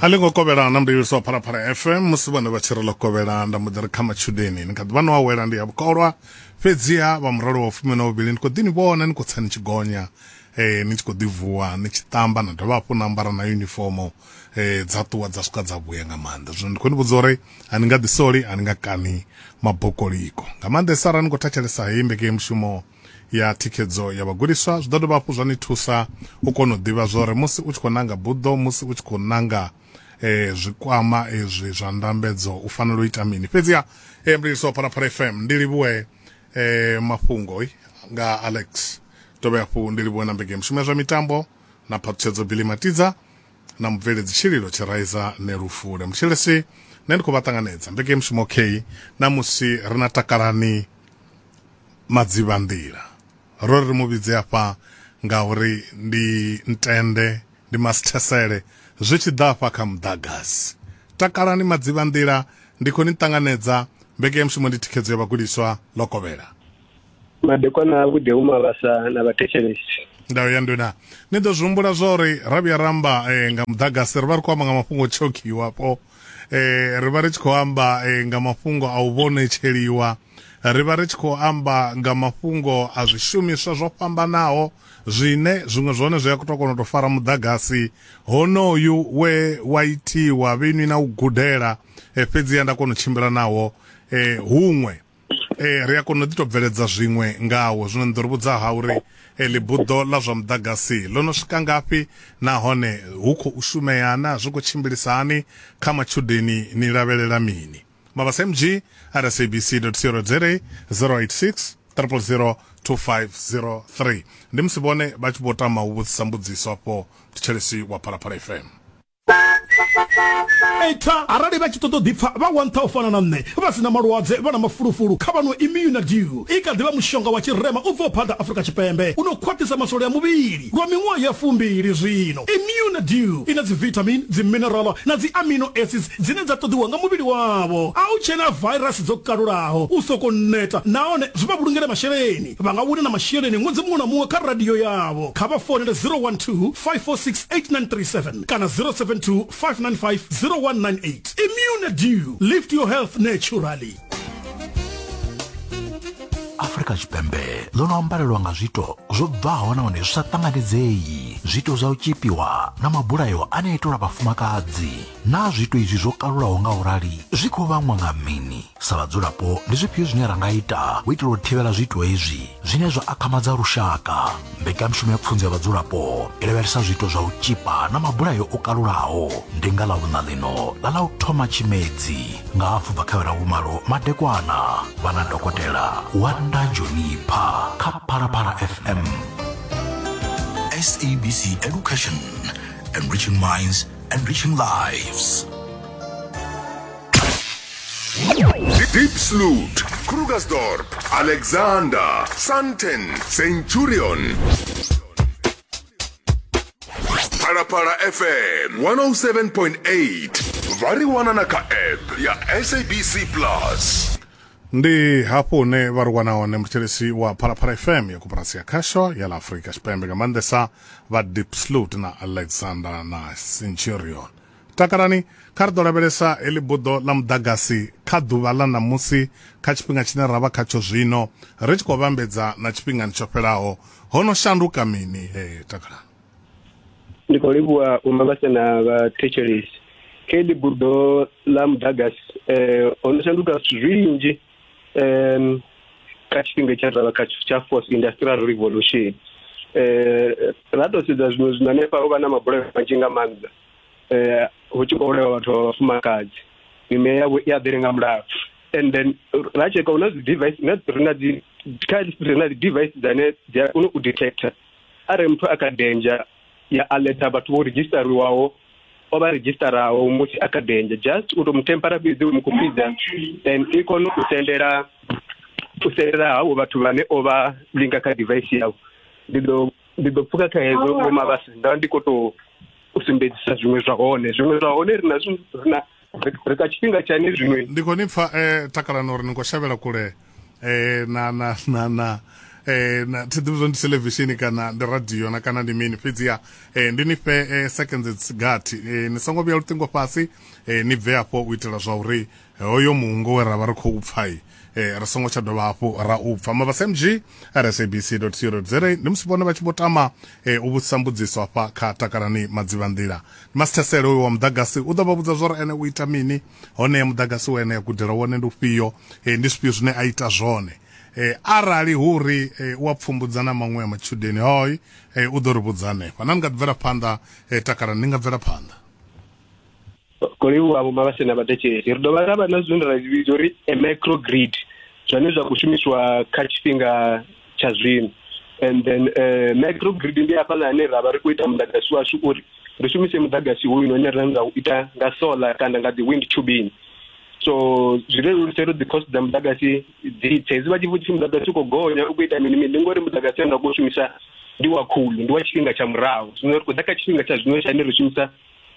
a ḽi ngo kovhela na mudavhisi wa phalaphala fm musi vhone vha tshi ri ḽo kovhela nda mbo ḓi ri kha matshudeni ni kha ḓi vha no awela ndi ya vhukolwa fhedziha vha muralo wa fumi na vhuvhili ni khou ḓi ni vhona ni khou tsa ni tshi gonya eh ni tshi khou ḓi vuwa ni tshi ṱamba na dovha hafhu na ambara na yunifomo eh dza ṱuwa dza swika dza vhuya nga maanḓa zwino ndi khou ni vhudza uri a ni nga ḓi soli a ni nga kani mabokoliko nga maanḓesa arali ni khou thetshelesa heyi mbekemushumo ya thikhedzo ya vhagudiswa zwi ḓo dovha hafhu zwa ni thusa u kona u ḓivha zwori musi u tshi khou nanga buḓo musi u tshi khou nanga eh, zwikwama ezwi zwa ndambedzo u fanela u ita mini fhedziha eh, mliliso wa phalaphala fm ndi livhuwe eh, mafhungo eh, nga alex dovhe hafhu ndi livhuwe na mbege mushumo ya zwa mitambo na phaṱhutshedzo bili matidza na mubveledzi tshililo tshiraiza nelufule mutshelesi nṋe ndi khou vha ṱanganedza mbege mushumo okay na musi ri na takalani Madzivhanḓila. Ro ri ri mu vhidze afha ngauri ndi ntende, ndi masithesele zwi tshi ḓa afha kha muḓagasi. Takalani Madzivhanḓila, ndi khou ni ṱanganedza. Mbekanyamushumo ndi thikhedzo ya vhagudiswa Lokovhela. Madekwana avhuḓi hu mavhasa na vhathetshelesi. Ndau ya nduna. Ni ḓo zwi humbula zwa uri ra vhuya ra amba eh, nga muḓagasi ri vha ri khou amba nga mafhungo o tshokiwapo eh, ri vha ri tshi khou amba eh, nga mafhungo a u vhonetsheliwa Ri vha ri tshi khou amba nga mafhungo a zwishumiswa zwo fhambanaho zwine zwiṅwe zwone zwi a tou kona u tou fara muḓagasi honoyu we wa itiwa vhenwi na u gudela eh, fhedziha nda kona u tshimbila nawo eh, huṅwe eh, ri a kona u ḓi tou bveledza zwiṅwe ngawo zwino ni ḓo ri vhudza ha uri eh, ḽibuḓo ḽa zwa muḓagasi ḽo no swika ngafhi nahone hu khou shumeana zwi khou tshimbilisa hani kha matshudeni ni lavhelela mini mabasmg at sabc co za 086 000 2503 ndi musi vhone vha tshi vho tama u vhudzisa mbudziso afho thetshelesi wa phalaphala fm eta arali vha tshi ṱoḓa u ḓipfa vha wantha u fana na nṋe vha si na malwadze vha na mafulufulu kha vhano immunadew i kha ḓivha mushonga wa tshirema u bvaho phanḓa afrika tshipembe u no khwaṱhisa masole a muvhili Lwa miṅwaha ya fumbili zwino, Immune Dew i na dzivithamini, dziminerala na dzi amino acids dzine dza ṱoḓiwa nga muvhili wavho. A hu tshena vairasi dzo kalulaho, u sokou neta nahone zwi vha vhulungele masheleni. Vha nga wina na masheleni ṅwedzi muṅwe na muṅwe kha radio yavho. Kha vha founele 012-546-8937 kana 072-595-0198. Immune Dew, Lift Your Health Naturally. afrika tshipembe ḽo no ambarelwa nga zwiito zwo bvaho nahone zwi sa ṱanganedzei zwiito zwa u tshipiwa na mabulayo ane itelwa vhafumakadzi naa zwiito izwi zwo kalulaho nga u rali zwi khou vhangwa nga mini sa vhadzulapo ndi zwifhio zwine ra nga ita u itela u thivhela zwiito hezwi zwine zwa akhamadza lushaka mbekanyamushumo ya pfunzo ya vhadzulapo i lavhelesa zwiito zwa u tshipa na mabulayo o kalulaho ndi nga ḽa vhuṋa ḽino ḽa ḽa u thoma tshimedzi nga hafu bva kha vhera vhumalo madekwana vhana dokotela wanda jonipha kha phalaphala fm sabc education enriching minds enriching lives Diepsloot, Krugersdorp, Alexander, Sandton, Centurion. Phalaphala FM 107.8 vha ri wana na kha app ya SABC Plus. ndi hafho hune vha ri wana hone muthetshelesi wa phalaphala fm ya koporasi ya khasho ya la afurika tshipembe nga maanḓesa vha dipslut na alexander na centurion Takalani kha ri ḓo lavhelesa heḽi buḓo ḽa muḓagasi kha ḓuvha ḽa ṋamusi kha tshifhinga tshine ra vha khatsho zwino, ri tshi khou vhambedza na tshifhingani tsho fhelaho. Ho no shanduka mini? He, takalani. Ndi khou livhuwa u no vhasa na vhathetshelesi kha heḽi buḓo ḽa muḓagasi. Ho no shanduka zwithu zwinzhi kha tshifhinga tshine ra vha khatsho tsha fourth industrial revolution. Ra tou sedza zwiṅwe zwino hanefha ho vha na mabulayo manzhi nga maanḓa. eh hu tshi khou vhulawa vhathu vha vhafumakadzi mime yavho i a ḓele nga mulalo and then ra tsheka hu na dzi device na ri na dzi kha ri na dzi device dzane dzi a kona u detector arali muthu a kha danger ya alerta vhathu vho redzhistariwaho o vha redzhistaraho musi a kha danger just u tou mu tempera fhedzi u mu khupidza then i kone u sendela u sendela havho vhathu vhane o vha linga kha device yavho ndi ḓo ndi ḓo pfuka kha hezwo vho mavhasi nda ndi kho to u sumbedzisa zwiṅwe zwa hone zwiṅwe zwa hone ri na ri na ri ka tshifhinga tshane zwiṅwe ndi khou ni pfa um takalani uri ni khou shavhela kule um na na na na eh na thi ḓivhi zwo ndi television kana ndi radio na kana ndi mini fhedziha eh ndi ni fhe eh, seconds gathi eh ni songo vhuya luṱingo fhasi eh ni bve afho u itela zwa uri hoyo muungo we ra vha ri khou pfa eh, ri songo tsha dovha hafhu ra u pfa mabasa mg rsabc co za ndi musi vhone vha tshi vho tama eh, u vhudzisa mbudziso hafha kha takalani madzivhanḓila ndi masithesele uyo wa muḓagasi u ḓo vha vhudza zwori ene u ita mini hone ya muḓagasi wa ene ya gudela wone ndi ufhio eh, ndi zwifhio zwine a ita zwone eh, arali hu uri eh, u a pfumbudza na maṅwe ya matshudeni hoi eh, u ḓo ri vhudza hanefha na ni nga ḓi bvela phanḓa eh, takalani ni nga bvela phanḓa ko livhuwa vho mavhase na vhatetshedzi ri dovha ra vha na zwine ra zwi vhidza uri a micro grid zwane zwa khou shumiswa kha tshifhinga tsha zwino and then uh, micro grid ndi hafhaḽa hane ra vha ri khou ita muḓagasi washu uri ri shumise muḓagasi hoyu une ra nga u ita nga solar kana nga dzi wind turbine so zwi leludza uri dzi-cost dza muḓagasi dzi tse hezwi vha tshi vhudzisa muḓagasi u khou gonya u khou ita mini mini ndi ngori muḓagasi ane ra khou shumisa ndi wa khulu ndi wa tshifhinga tsha murahu zwino ri khou ḓa kha tshifhinga tsha zwino tshane ri shumisa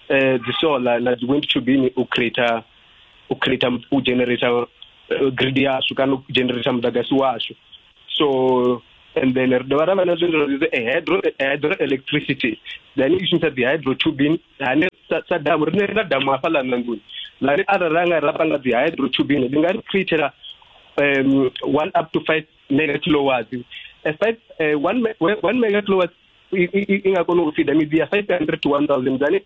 eh dzi solar na dzi wind turbine u creator u creator u generator eh, grid yashu kana u generator muḓagasi washu so and then ri dovha ra vha na zwinzwa zwi eh, hydro eh, hydro electricity then i shumisa dzi hydro turbine hane sa, sa damu rine ri na damu hafha ḽa nangoni lani arali ra nga ra panga dzi hydro turbine ndi nga ri createla um, one up to five mega kilowatts uh, five, uh, one, me- one mega kilowatts i, i, i nga kona u fida midzi ya 500 to 1000 dzane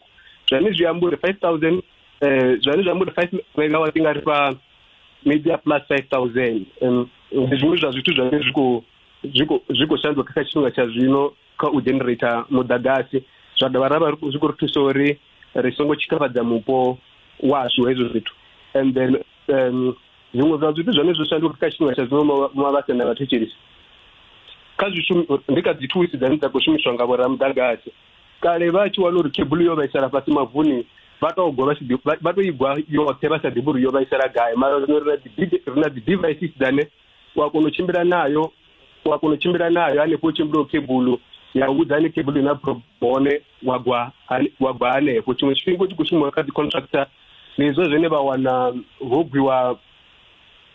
zwani zwi amba uri 5000 eh zwani zwi amba uri 5 megawatt nga ri fha midzi ya plus 5000 um, ndi zwiṅwe zwa zwithu zwine zwi khou zwi khou zwi khou shanduka kha tshifhinga tsha zwino kha u generator mudagasi zwa dovha ra vha ri khou- zwi khou ri thusa uri ri songo tshikafhadza mupo washu hezwo zwithu and then um, zwiṅwe zwa zwithu zwone zwo shanduka kha tshifhinga tsha zwino mwa vha sena vhathetshelisi kha zwishumi ndi kha dzi thusi dzane dza khou shumiswa nga vhoramudagasi kale vha tshi wana uri kebulu yo vhaisala fhasi mavuni vha to gwa vha to igwa yoṱhe vha sa ḓivhi uri yo vhaisala gai mara zwino ri na dzi devices dzane u a kona u tshimbila nayo wa kona u tshimbila nayo hanefho u tshimbila khebulu ya u vhudza hanefho khebulu na hone wa gwa wa gwa hanefho tshiṅwe tshifhinga u tshi khou shuma kha dzi contractor ndi izwo zwine vha wana ho gwiwa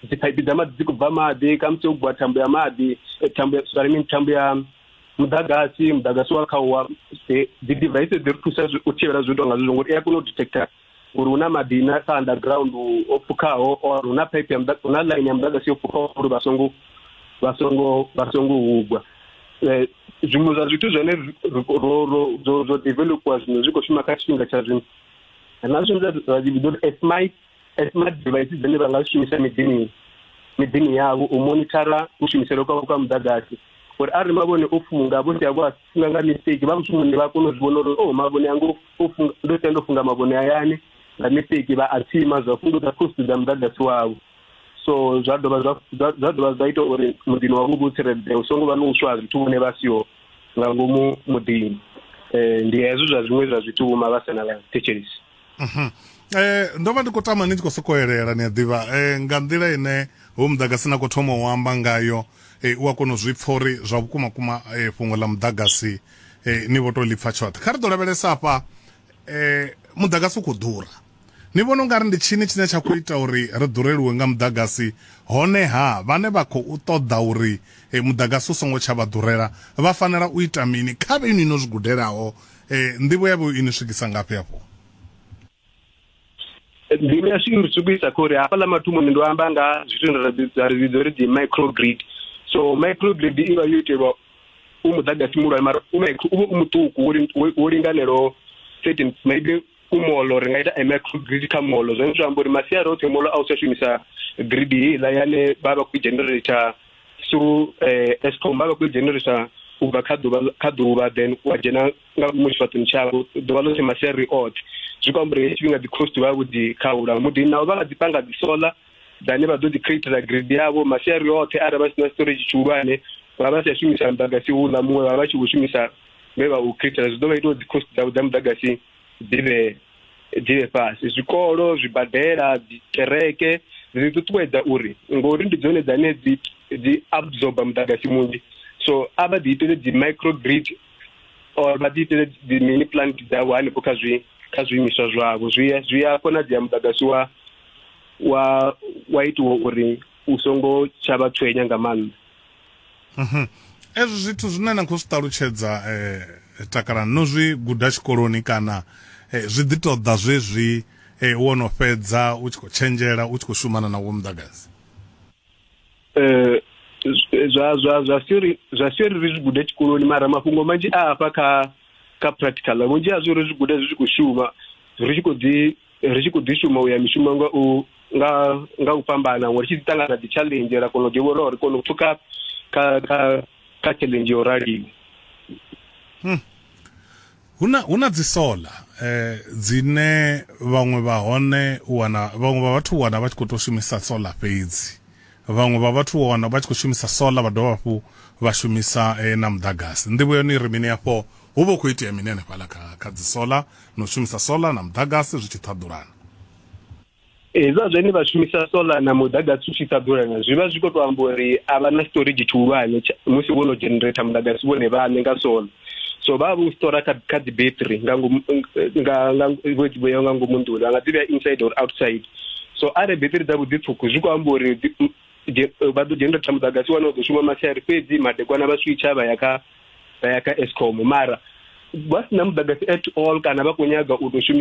dziphaiphi dza maḓi dzi khou bva maḓi khamusi u gwa thambo ya maḓi eh, thambo ya sorry mini thambo ya muḓagasi muḓagasi wa kha wa eh, dzi device dzi ri thusa u thivhela zwi tou nga zwi zwo ngori i a kona u detector uri hu na maḓi na kha underground o pfukhaho or hu na pipe ya hu na line ya muḓagasi yo pfukhaho uri vha songo vha songo vha songo hugwa eh, zwiṅwe zwa zwithu zwine zwo developiwa zwino zwi khou shuma kha tshifhinga tsha zwino na zwine zwa vhidzwa uri esmite smart devices dzine vha nga shumisa miḓini miḓini yavho u monithara kushumisele kwavho kwa muḓagasi uri arali mavhone o funga vho sia vho funga nga mistake vha mushumoni vha kona u zwi vhona uri oh mavhone anga ndo sia ndo funga mavhone hayani nga mistake vha a tsima zwa fhungudza khosi dza muḓagasi wavho so zwa dovha zwa dovha zwa ita uri muḓini wavho vhu tsireledzea u songo vha no uswa zwithu vhone vha siho nga ngomu muḓini um ndi hezwo zwa zwiṅwe zwa zwithu vhuma vha sena vha thetshelesi Mhm. Eh ndo vha ndi khou tama ni tshi khou sokou elela ni a ḓivha eh nga nḓila ine ho muḓagasi na khou thoma u amba ngayo eh u a kona u zwi pfha uri zwa vhukuma kuma eh fhungo ḽa muḓagasi eh ni vho to lipfa tshoṱhe kha ri ḓo lavhelesa afha eh muḓagasi u khou ḓura ni vhona ungari ndi tshini tshine tsha khou ita uri ri ḓureliwe nga muḓagasi hone ha vhane vha khou ṱoḓa uri eh, muḓagasi u songo tsha vha ḓurela vha fanela u ita mini kha vhe ni no zwi gudelaho Ee, nḓivho yavho i ni swikisa ngafhi afho? Nḓivho yashu i ni swikisa kha uri hafhaḽa mathomoni ndo amba nga zwithu ra ri vhidza uri dzi microgrid so microgrid i vha yo itelwa u muḓagasi muhulwane mara u vha u muṱuku wo linganelaho certain maybe ku molo ri nga ita micro grid kha molo zwine zwa amba uri masiari oṱhe molo a u tsha shumisa grid heiḽa yane vha vha khou generator through eh, escom vha vha khou generator u bva kha ḓuvha kha ḓuvha then wa dzhena nga ngomu tshifhaṱoni tshavho ḓuvha ḽoṱhe masiari oṱhe zwi khou amba uri hei tshifhinga dzi cost vha vho dzi khaula mudini navho vha nga dzi panga dzi solar vhane vha ḓo ḓi createla grid yavho masiari oṱhe arali vha si na storage tshihulwane vha vha si a shumisa muḓagasi houḽa muṅwe vha vha tshi khou shumisa vhe vha u createla zwi ḓo vha ita uri dzicost dzavho dza muḓagasi dzi vhe dzi vhe fhasi zwikolo zwibadela dzikereke dzi ṱuṱuwedza uri ngori ndi dzone dzane dzi dzi absorba muḓagasi munzhi so a vha ḓi itele dzi micro grid or vha ḓi itele dzi mini plant dzavho hanefho kha zwi kha zwiimiswa zwavho zwi zwi a konadzea muḓagasi wa wa wa itiwa uri u songo tsha vha tshwenya nga maanḓa mhm. ezwo zwithu zwine na khou zwi ṱalutshedza um takala no zwi guda tshikoloni kana eh, zwi ḓi ṱoḓa zwezwi um wo no fhedza u tshi khou tshenzhela u tshi khou shumana na wo muḓagasi eh zwa zwa zwa theory zwa theory ri zwi gude tshikoloni mara mafhungo manzhi a hafha kha kha practical vhunzhi ha zwi ri zwi gude zwi tshi khou shuma ri tshi khou ḓi ri tshi khou ḓi shuma u ya mishumo nga u nga nga u fhambana ngori tshi ḓi ṱangana dzi challenge ra kona u ḓivha uri ri kona u pfuka kha kha kha challenge yo raliho hmm. Hu na, hu na dzi solar eh, dzine vhaṅwe vha hone u wana vhaṅwe vha vhathu u wana vha tshi khou tou shumisa solar fhedzi vhaṅwe vha vhathu u wana vha tshi khou shumisa solar vha dovha hafhu vha shumisa eh, na muḓagasi nḓivho yone i ri mini afho hu vha hu khou itea mini hanefhaḽa kha, kha dzi solar na u shumisa solar na muḓagasi zwi tshi ṱhaḓulana hezwa zwine vha shumisa solar na muḓagasi u tshi sa ḓulana zwi vha zwi khou tou amba uri a vha na storage tshihulwane musi vho no generata muḓagasi vhone vhaṋe nga solar so vha vhu stora kha kha dzi battery nga ngomu nga nga vho dzi vhea nga ngomu nḓuni vha nga dzi vhea inside or outside so arali battery dza vhuḓi pfhuku zwi khou amba uri vha ḓo generate muḓagasi wane u ḓo shuma masiari fhedzi madekwana vha switcha vha ya kha vha ya kha escom mara vha si na muḓagasi at all kana vha khou nyaga u tou shumisa